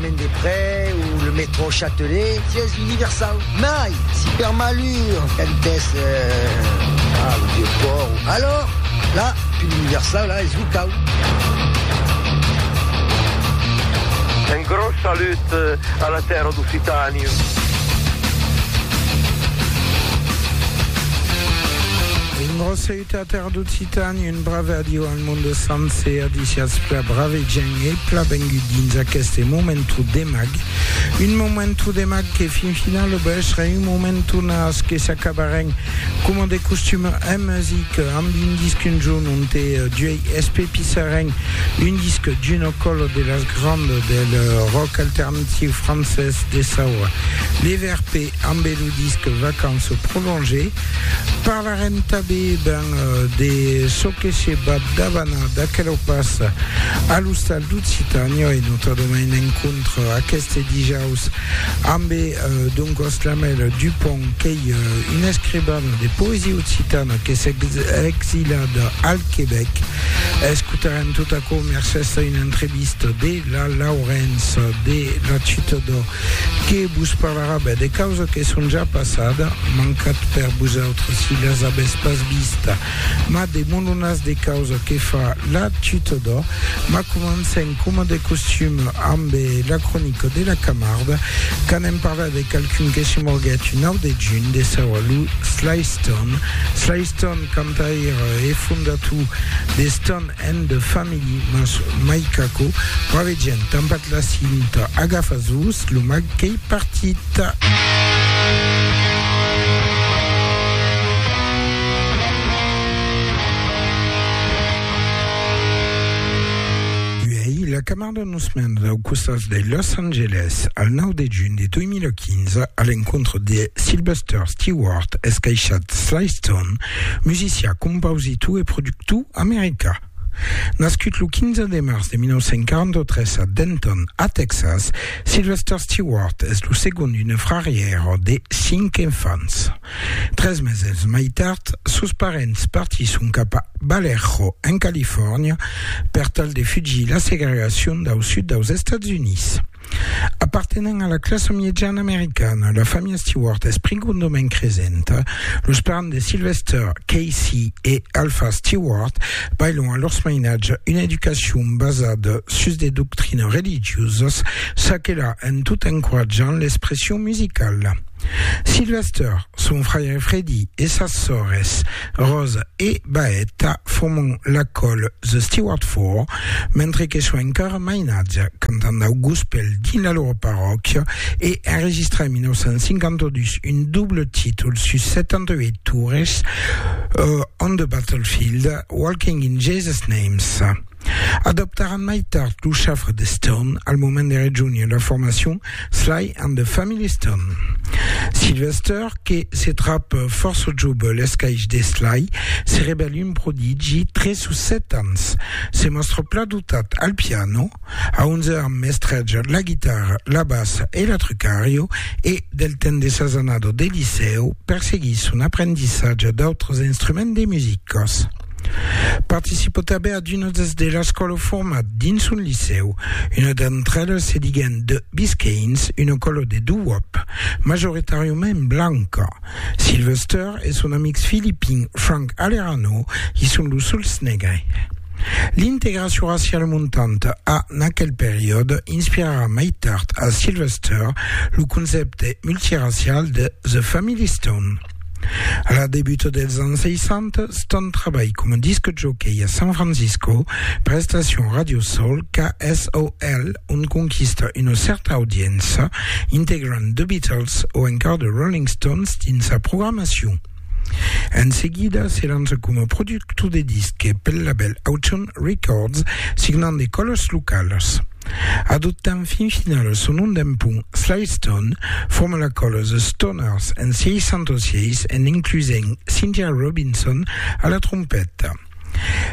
Mendeprais ou le métro Châtelet, siège universau, mai si per malur entès a lo vieu pòrt o alors la pil universau la es locau. Un gròs salut a la tèrra d'Occitània. T'as perdut Titan, un brave adiu al monde sencer, adiciatz pla brave gent e pla vengut dins aqueste momentu de mag, un momentu de mag que fin finala ba estre un momentu nas que s'acabarem coma de costuma en musica amb un disc un jorn onte d'uei espepissarem un disc d'una cola de las grandas del rock alternatiu francés de saua, les Verts, p. Ambe lo disc Vacances prolongées, parlarem tanben ben de çò que se bat davana d'aquelo pas a l'Ostal d'Occitània e notadament en contra aqueste dijaus ambe Don Coslamel Dupont qu'ei un escribana de poesia occitana qu'es exilat al Quebec. Escotarem tot aquò mercés a una entrevista de la Laurence de la Chute d'Or. Que vos parlarà ben de causa que son ja passada, mancat per vosautres si las avètz pas vista, mas de molonas de causa que fa la Tutodò. Mas comencem coma de costum amb la cronica de la Camarda, qu'anem parlar de qualqu'un que se morguèt un 9 de junh de saua lo Sly Stone. Sly Stone, cantaire e fondator de Stone and the family mas mai qu'aquò pravegian tanpad la cinta agafa jos lo mag qu'ei partit. Uèi la camarda nos mena dau costat de Los Angeles al 9 de junh de 2015 a l'encontre de Sylvester Stewart escaishat Sly Stone musician, compausitor e productor american. Nascut lo 15 de març de 1943 a Denton, a Tèxas, Sylvester Stewart es lo segond d'una frarièra de cinc enfants. Tres meses mai tard, sos parents partisson cap a Vallejo, en Califòrnia, per tal de fugir la segregacion dau sud daus Estats Units. Apartenent a la classa miejana americana, la familha Stewart es prigondament cresenta. Los parents de Sylvester, Casey e Alpha Stewart, bailhon a lors mainatge una educacion basada sus de doctrinas religiosas, çaquelà en tot encoratjant l'expression musicala. Sylvester, son fraire Freddie e sas sòrres, Rose e Baeta forman la còl The Stewart Four, mentre que son encara mainatge, cantant dau gospèl dins la lora parròquia e enregistrar en 1952 un doble títol sus 78 tours, On the Battlefield, Walking in Jesus' Names. Adoptaràn mai tard lo chafre de Stern al moment de rejónher la formacion Sly and the Family Stern. Sylvester, que se trap fòrça jove l'escaish de Sly, se revèl un prodigi tre sus 7 ans. Se mòstra pla dotat al piano, a 11 ans mestreja la guitarra, la bassa e l'atrucario e, del temps de sas annadas de licèu, perseguís son aprendissatge d'autres instruments de musicas. Participo tanben a d'una des de las qu'au lo format dins un licèu. Una d'entre elas se diguèn The Biscaynes, una còlo de doo-wop, majoritàriament blanca. Sylvester e son amics filipin Frank Alerano i son los suls negres. L'integracion raciala montanta a, n'aquel periòde, inspirarà mai tard a Sylvester lo concèpte multiracial de The Family Stone. A la debuta dels ans 60, Stone trabalh coma disc jockey a San Francisco per l'estacion Radio Soul KSOL, ont conquista una cèrta audiença, integrant The Beatles o encara The Rolling Stones dins sa programacion. En seguida, se lança coma productor de disques pel labèl Autumn Records, signant de còlas localas. Adoptant fin finala son nom d'empont, Slystone forma la còla The Stoners en 606 en inclusent Cynthia Robinson a la trompeta.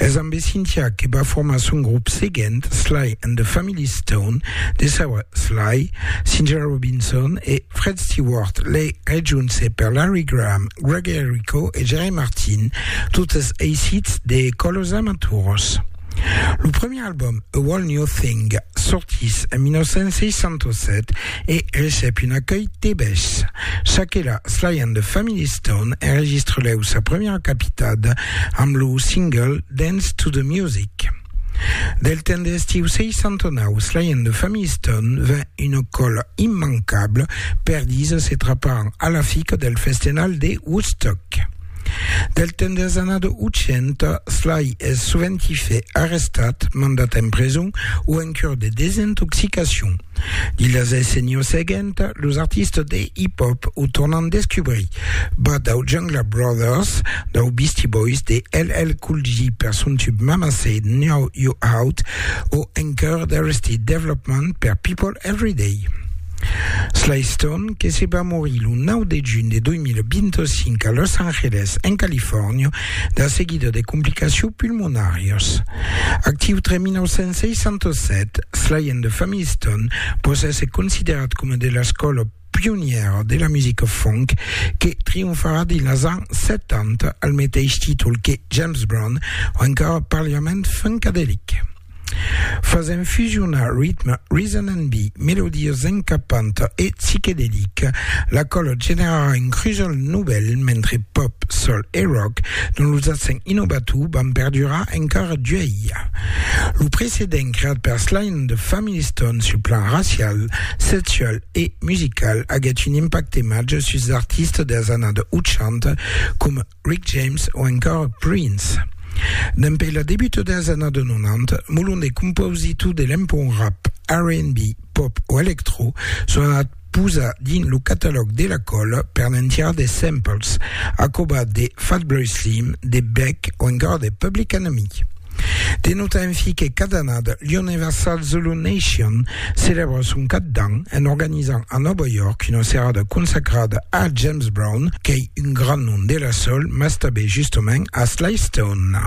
Es ambe Cynthia que va formar son grop seguent, Sly and the Family Stone, de saua Sly, Cynthia Robinson e Fred Stewart, lei rejunse per Larry Graham, Greg Errico e Jerry Martin, totes eissits de còlos amaturas. Lo primièr album, A Whole New Thing, sortís en 1967 e recep un acuèlh tebés. Çaquelà, Sly and the Family Stone enregistrelèu sa primièra capitada amb lo single Dance to the Music. Del temps de l'estiu 69, Sly and the Family Stone ven una còla immancabla per disas e traparan a l'afica del festenal de Woodstock. Del temps des annadas 800, Sly es soventi fait arrestat, mandat en preson o en cure de desintoxicacion. Dins las decennias seguentas, los artistas de hip-hop o tornan descubrir, bas dau Jungla Brothers, dau Beastie Boys, de LL Cool J per son tub Mama Said Now You Out o encara d'Arrested Development per People Everyday. Slaystone, que se va morir lo 9 de junh de 2025 a Los Angeles, en Califòrnia, de seguida de complicacions pulmonàrias. Actiu tre 1967, Sly and the Family Stone pòt èsser considerat coma de l'escòla pionièra de la musica funk que trionfarà dins los ans 70 al meteis títol que James Brown, o encara parliament funkadelic. Fasent fusionar ritme, reason and be, melodias encapantas e psiquedelicas, la còla generarà un crujol novèl mentre pòp, sol e rock, dont los accents innovators van perdurar encara d'uèlha. Lo precedent creat per Sly and the Family Stone sul plan racial, sexual e musical aguèt un impacte màger suls artistas dels annadas 80 coma Rick James o encara Prince. Dempè la debuta dels annads 90, molon de compausitors de l'empont rap, R&B, pop o electro son anats posar dins lo catalòg de la còla per ne'n tirar de samples, a cobat de Fatboy Slim, de Beck o encara de Public Enemy. De nota enfi que cada annada l'Universal Zulu Nation celèbra son cap d'an en organizant a Nòva York una serada consacrada a James Brown, qu'ei un grand nom de la soul, mas tanben justament a Sly Stone.